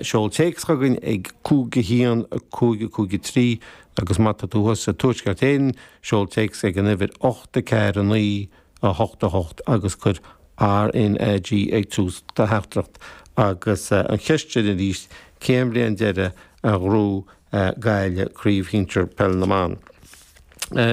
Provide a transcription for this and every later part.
Seol téacs againn ag 51 553 agus má tá tú thuas sa Tuaisceart Éireann, seol téacs ag an uimhir 8 4 9 8 8 agus cuir RnaG ag tús do theachtaireacht. Agus an cheist sin arís, cén bhliain deireadh a ghnóthaigh Gaillimh Craobh Shinsir Peil na mBan?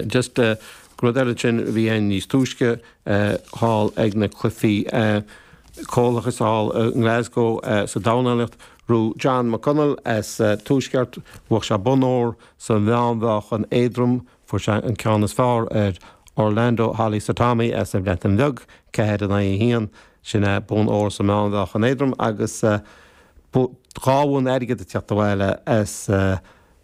Just rud eile ansin a bhí ann níos túisce thall ag na Cluichí Comhlathais thall i nGlasgow sa dornálaíocht, raibh John McConnell as an Tuaisceart, bhuach sé bonn ór sa mheánmheáchan éadrom, fuair sé an ceann is fearr ar Orlando Holley-Sotomi as an Bhreatain Bheag, ceathair in aghaidh a haon, sin é bonn ór sa mheánmheáchan éadrom agus dhá bhonn airgid ag teacht abhaile as.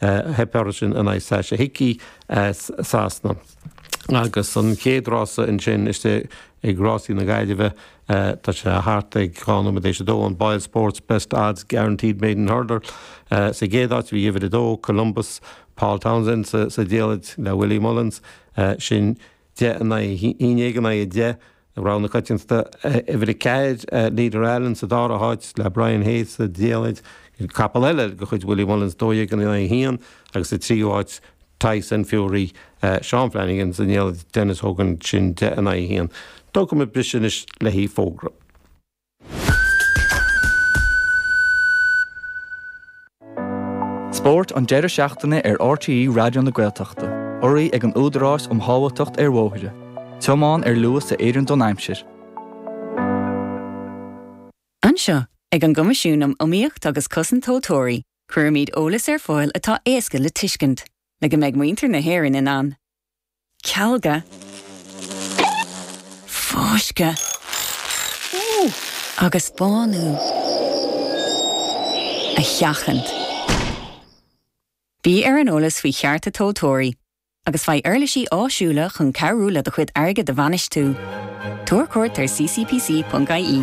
Theip uirthi sin in aghaidh Sacha Hickey as Sasana agus an chéad rása ansin istigh ag Rásaí na Gaillimhe. Tá sé thart ag dhá nóiméad tar éis a dó, an BoyleSports Best Odds Guaranteed Maiden Hurdle. Sa gcéad áit a bhí uimhir a dó, Columbus, Paul Townsend sa diallait le Willie Mullins. Sin. 10 in aghaidh 11 in aghaidh 10 rogha na coitianta, uimhir a ceathair, Leader Allen sa dara háit le Brian Hayes sa diallait, capall eile de chuid Willie Mullins, 12 in aghaidh 1 agus sa tríú háit Tyson Fury, Seán Flanagan sa ndiallait, Denis Hogan sin 10 in aghaidh 1. Tógfaimid briseadh anois le haghaidh fógra. Spórt an deireadh seachtaine ar RTÉ Raidió na Gaeltachta. Urraithe ag an Údarás um Shábháilteacht ar Bhóithre. Tiomáin ar luas a oireann don aimsir. Anseo, ag an gCoimisiún um Iomaíocht agus Cosaint Tomhaltóirí, cuirimid eolas ar fáil atá éasca le tuiscint, le go mbeidh muintir na hÉireann in ann cealgadh, fáscadh agus bánú a sheachaint. Bí ar an eolas faoi chearta tomhaltóirí agus faigh uirlisí áisiúla chun cabhrú le do chuid airgid a bhainistiú. Tabhair cuairt ar ccpc.ie.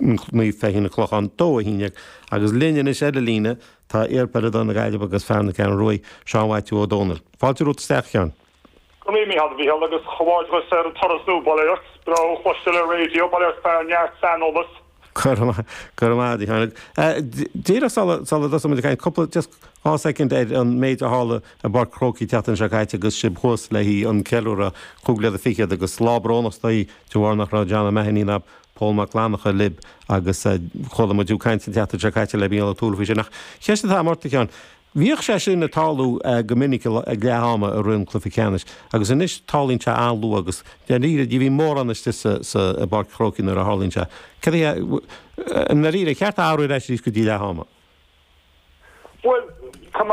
Naomh Feichín, An Clochán, dó a shíneadh agus linn anois ar an líne tá iarpheileadóir na Gaillimhe agus fear na Ceathrún Rua, Seán Mhaitiú Ó Domhnaill. Fáilte romhat isteach, Sheáin. Go n-éirí mícheart a Mhícheál agus comhghairdeas ar an turas nua, bail ó Dhia ort. Breá thú a chloisteáil ar raidió, bail ort fear, neart saineolas. Go raibh maith, go raibh maith, a Sheáin. Díreach sula, sula dtosaímid ag caint, cúpla, just dhá soicind ar an méid a tharla i bPáirc an Chrócaigh an tseachtain seo caite agus sibh thuas le haghaidh an ceiliúradh cúig bliana fichead agus lá brónach is dóigh de bharr nach raibh John O'Mahony ná. Pól Mac Fhlannacha, Lib. Agus chuala muid tú ag caint an tseachtain seo caite le Mícheál Ó Tuathail faoi sin. Ach ceist atá agam ort, a Sheáin. Bhíodh sé sin ag tarlú go minic ag leath ama i rith an chluiche ceannais agus anois tarlaíonn sé an-luath agus dáiríre ní bhíonn mórán istigh sa i bPáirc an Chrócaigh nuair a tharlaíonn sé. Cén, i ndáiríre ar cheart é a athrú arís go dtí leath ama? Bhuel, tá mé.